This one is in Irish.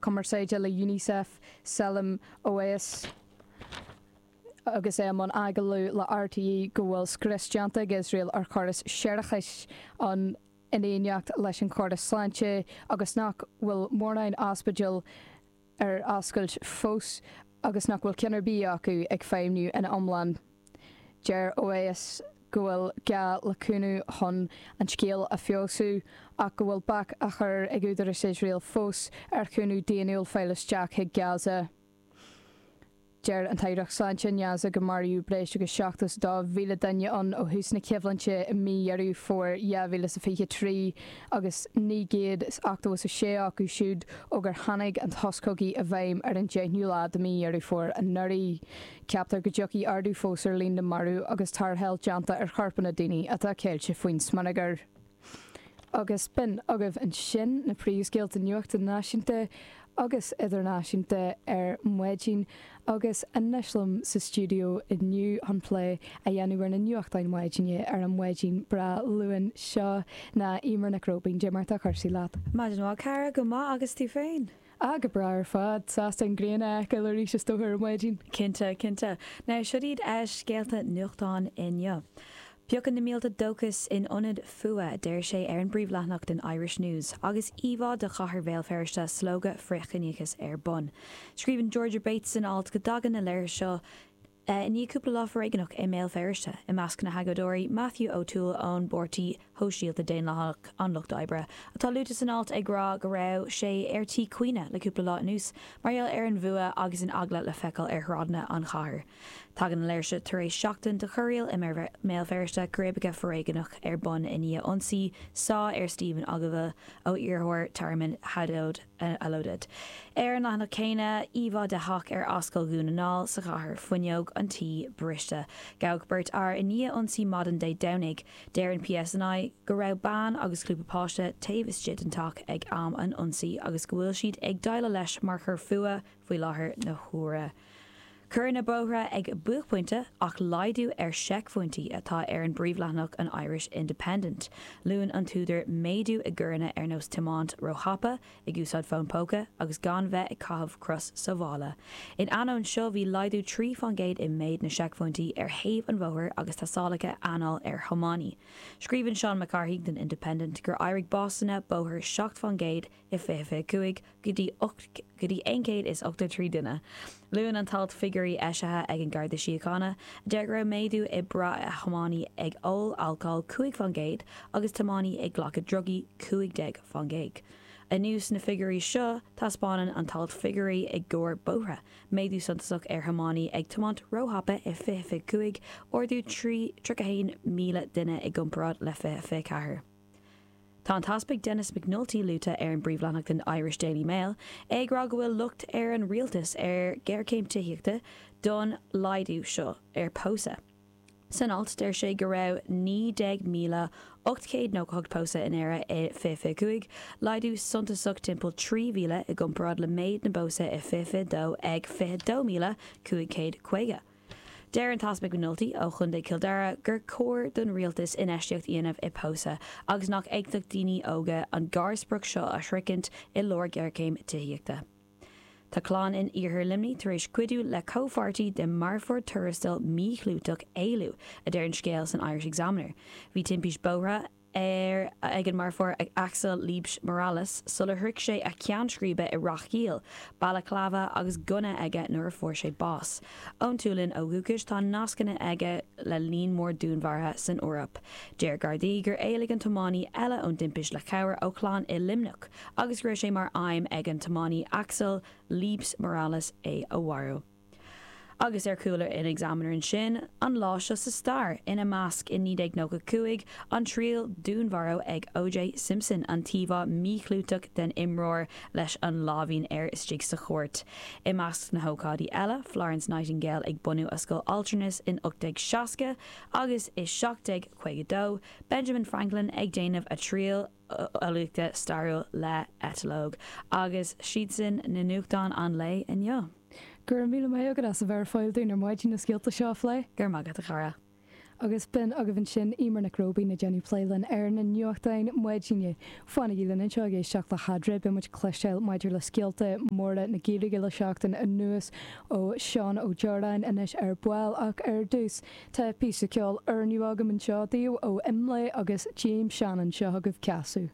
cumarsáide le Unicef, Salim Oweis, agus é i mbun agallaimh le RTÉ, go bhfuil scrios déanta ag Iosrael ar chóras séarachais ann in éineacht leis an chóras sláinte agus nach bhfuil mórán ospidéal ar oscailt fós agus nach bhfuil ceann ar bith acu ag feidhmniú ina iomlán. Deir Oweis go bhfuil gá le cúnamh chun an scéal a feabhsú ach go bhfuil bac á chur ag údarais Iosrael fós ar chúnamh daonnúil fáil isteach chuig Gaza. Deir an Aireacht Sláinte in Gaza gur maraíodh breis agus 72,000 duine ann ó thús na coimhlinte i mí Dheireadh Fómhair 2023 agus 986 acu siúd ó gur tháinig an sos cogaidh i bhfeidhm ar an deichiú lá de mhí Dheireadh Fómhair anuraidh. Ceaptar go dtiocfaidh ardú fós ar líon na marbh agus tarrtháil déanta ar chorpanna daoine atá ceilte faoin smionagar. Agus b'in agaibh ansin na príomhscéalta nuachta náisiúnta agus idirnáisiúnta ar maidin agus anois liom sa stiúideo inniu chun plé a dhéanamh ar na nuachtáin mhaidine ar an maidin breá Luain seo ná Eimear Nic Róibín. Eimear, cad iad cúrsaí leat. Maidin mhaith, a chara, go maith agus tú féin? Ah, go breá ar fad. Sásta an ghrian a fheiceáil arís is dócha ar maidin. Cinnte, cinnte. Now seo iad scéalta nuachtáin inniu. Piocann na mílte dóchas in ionad fuath, a deir sé ar an bpríomhleathanach den Irish News, agus íomhá de chathair Bhéal Feirste slógadh frithchiníochais ar bun. Scríobhann Georgia Bates san alt go dtagann an léiriú seo, I ndiaidh cúpla lá foréigneach i mBéal Feirste i measc na hagóideoirí, Matthew O Toole ón bPáirtí Shóisialta, Daonlathach an Lucht Oibre, atá luaite san alt, ag rá go raibh sé ar tí caoineadh le cúpla lá anuas mar gheall ar an bhfuath agus an eagla le feiceáil ar shráideanna an chathair. Tagann an léirsiú tar éis seachtain de chorraíl i mBéal Feirste, círéibeacha foréigneach ar bun i ndiaidh ionsaí sá ar Stephen Ogilvie ó iarrthóir tearmainn Hadi, Alodid. Ar an leathanach céanna, íomhá de theach ar Ascaill Dhún na nGall sa chathair, fuinneog an tí briste. Gabhadh beirt fhear i ndiaidh ionsaí maidin Dé Domhnaigh. Deir an PSNI go raibh bean agus grúpa páistí taobh istigh den teach ag am an ionsaí agus go bhfuil siad ag déileáil leis mar choir fuatha Faoi láthair na huaire coireanna bóithre ag buaicphointe ach laghdú ar sheicphointí atá ar an bpríomhleathanach an Irish Independent. Luann an t-údar méadú i gcoireanna ar nós tiomáint róthapa, ag úsáid fón póca agus gan bheith ag caitheamh crios sábhála. In ainneoin seo bhí laghdú trí faoin gcéad i méid na seicphointí ar thaobh an bhóthair agus tástálacha anála ar thiománaithe. Scríobhann Seán Mac Cárthaigh don Independent gur éirigh básanna bóthair seacht faoin gcéad i 2025 go dtí 8 go dtí 183 duine. Luann an t-alt figiúirí eisithe ag an Garda Síochána a deir go raibh méadú i mbrath ar thiománaí ag ól alcóil 5 fán gcéad agus tiománaí ag glacadh drugaí 15 fán gcéad. Anuas ar na figiúirí seo taispeánann an t-alt figiúirí i gcomhair bóithre, méadú suntasach ar thiománaí ag tiomáint róthapa i 2025, ardú 31,000 duine i gcomparáid le 2024. Tá an tEaspag Denis Nulty luaite air an an bpríomhleathanach den Irish Daily Mail é ag rá go bhfuil locht ar an Rialtas ar ghéarchéim tithíochta don laghdú seo ar pósadh. San alt, deir sé go raibh 19,898 pósadh in Éire i 2025, laghdú suntasach timpeall 3,000 i gcomparáid le méid na bpósadh i 2022 ag 22,550. Deir an tEaspag Nulty ó Chontae Chill Dara gur chóir don Rialtas infheistíocht a dhéanamh i pósadh agus nach fhéadfadh daoine óga an gharsprioc seo a shroichint i lár géarchéim tithíochta. Tá clann in Iarthar Luimní tar éis cuidiú le comhpháirtí de marfóir tuarastail míchlúiteach éalú, a deir an scéal san Irish Examiner. Bhí timpist bóithre. ar ag an marfóir Axel Liebsch Morales sular shroich sé a cheann scríbe i Ráth Caola, balaclava agus gunna aige nuair a fuair sé bás. Ón tSualainn ó dhúchais, tá nascanna aige le líon mór dúnmharaithe san Eoraip. Deir Gardaí gur éalaigh an tiománaí eile ón dtimpist le cabhair ó chlann i Luimneach agus go raibh sé mar aidhm ag an tiománaí Axel Liebsch Morales é a mharú. Agus ar chúl an Examiner ansin, An Lá Seo Sa Stair, ina measc, i 1995, an triail dúnmharú ag OJ Simpson, an t-íomhá míchlúiteach den imreoir leis an láimhín air istigh sa chúirt. I measc na hócáidí eile, Florence Nightingale ag bunú a Scoil Altranais in 1860, agus i 1752, Benjamin Franklin ag déanamh a thriail, eolaíochta stairiúil le eitleog agus siadsan na nuachtáin an lae inniu. Go raibh míle maith agat as a bheith ar fáil dúinn ar maidin na scéalta seo a phlé. Go raibh maith agat, a chara. Agus b'in agaibh ansin Emer Nic Róibín ag déanamh plé linn ar na nuachtáin maidine. Fanaigí linn anseo ag éisteacht le hAdre, beidh muid ag cloisteáil maidir le scéalta móra na Gaeilge le seachtain anuas ó Sheán Ó Deoráin anois ar ball ach ar dtús, Tá píosa ceoil nua agam anseo daoibh ó Imlé agus James Shannon, seo agaibh Ceasadh.